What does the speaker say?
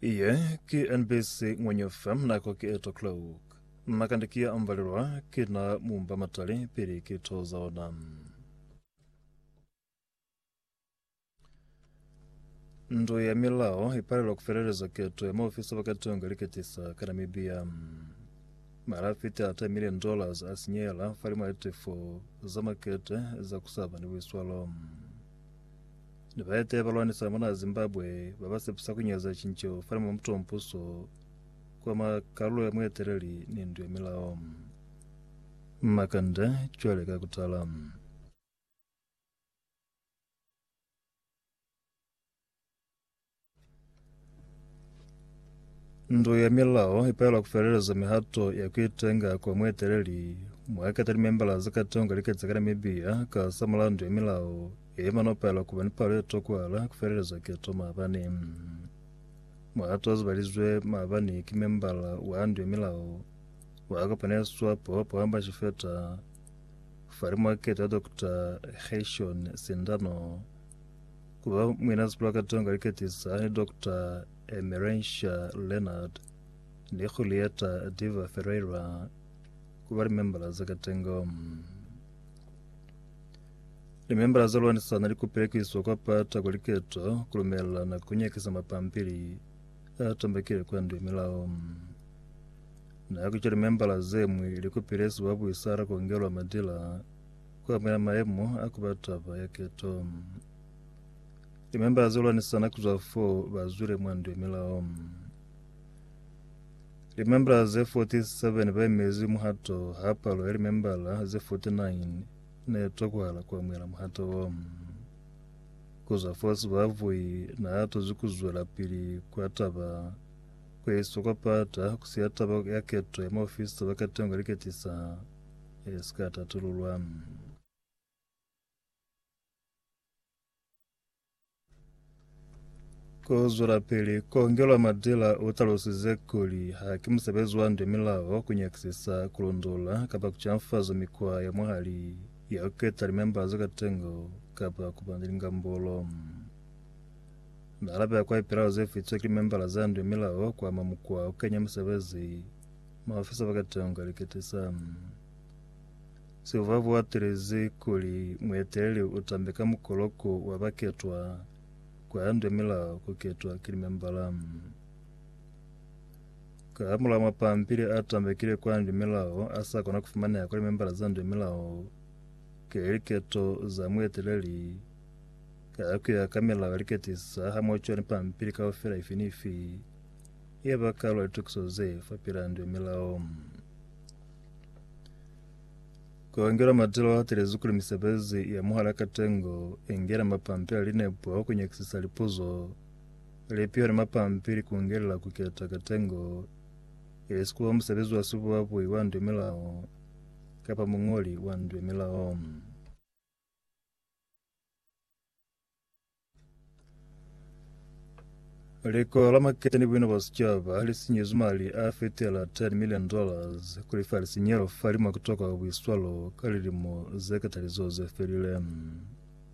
Iye ki NBC Ngwenye FM nako ki 8 o'clock. Na kandi ki ya ambalelwa ki na mumba matali pili ki to za ona. Ndu ya milao ipalelwa kufeleleza keto ya maofisa bakatonga liketisa ka Namibia. Mara fiti a 10 million dollars a sinyela falimo ya tifo za makete za kusaba ni buiswalo. Ni baeteyi ba lwanisa mona Zimbabwe ba ba sepisa ku nyaza cinco fani mwa mutu wa mpuso kwa mwa kalulo ya mueteleli ni ndu ya milao. Makanda cwale ka kutala. Ndu ya milao ipela kufeleleza mihato ya kuitenga kwa mueteleli mwaketa limembala za katonga liketsa ka Namibia ka sa mulandu ya milao emana upela kuba ni palo etokwala kufeleleza keto maabane muhato azibalizwe maabane ki membala wa ndu ya milao wakapaneswa po pohamba shifeta fali mwaketa Dr. Heshon Sindano Ku ba muinasi pulakatong ka liketisa ni Doctor Emerencia Leonard ni Julieta Diva Ferreira ku ba limembala za katengo. Limembala za lwanisana li kupile ku iswa kwa pata kwa liketo ku lumelelana ku nyakisa mapampili a tambakile kwa ndu ya milao. Na ku ca limembala ze mwi li kupile sibabuisara ku ngelwa madila kuamukela maemo a kuba taba ya keto. Limemba zilwanisana kuzwa fo bazwile mwa ndu ya milao. Limembala ze 47 baimezi muhato ha palo ya limembala ze 49 ne tokohala kuamukela muhato wo. Kuzwa fo sibavui na atozi kuzwela pili kwa taba kweiswa kwa pata kusiya taba ya keto ya maofisa ba katengo liketisa Ye si ka tatululwa. Ku zwelapili kongelwa madila u talusize kuli ha ki musebezi wa nde milao ku nyakisisa, ku londola kapa ku canfaza mikwa ya mwahali ya ku keta limemba za katengo kapa ku ba ni lingambolo. Na alabela kwa lipilao ze fitwe ki limembala za nde milao ku ama mukwa wa ku kenya musebezi Maafisa ba katango ka likete sa Silva bo atelezi kuli mueteleli u tambe ka mukoloko wa baketwa kwa yandwe milao ku ketwa ki limembala. Ka hamulaho mapampili a tambekile kwa yandwe milao a sa kona ku fumaneha kwa limembala za ndwe milao kili liketo za mueteleli ka ku ya ka milao ya liketisa hamoho cwale ni pampili kaufela ifi ni ifi Ye ba kalo ya tukiso ze fa pilandu ya milao. Koangela matelo a telezi kuli misebezi ya muhala katengo engela mapampila linepo a kunyakisisa lipuzo lipiho ni mapampili kungelela kuketa katengo ilisikuba musebezi wa sibuabui wa ndu ya milao kapa mungoli wa ndu ya milao. Lika la maketa ni buina bwa sicaba li sinyezwi mali a fetela 10 million dollars ku lifa lisinyelo fa limo kutoka buiswalo ka lilimo ze katali zo ze felile.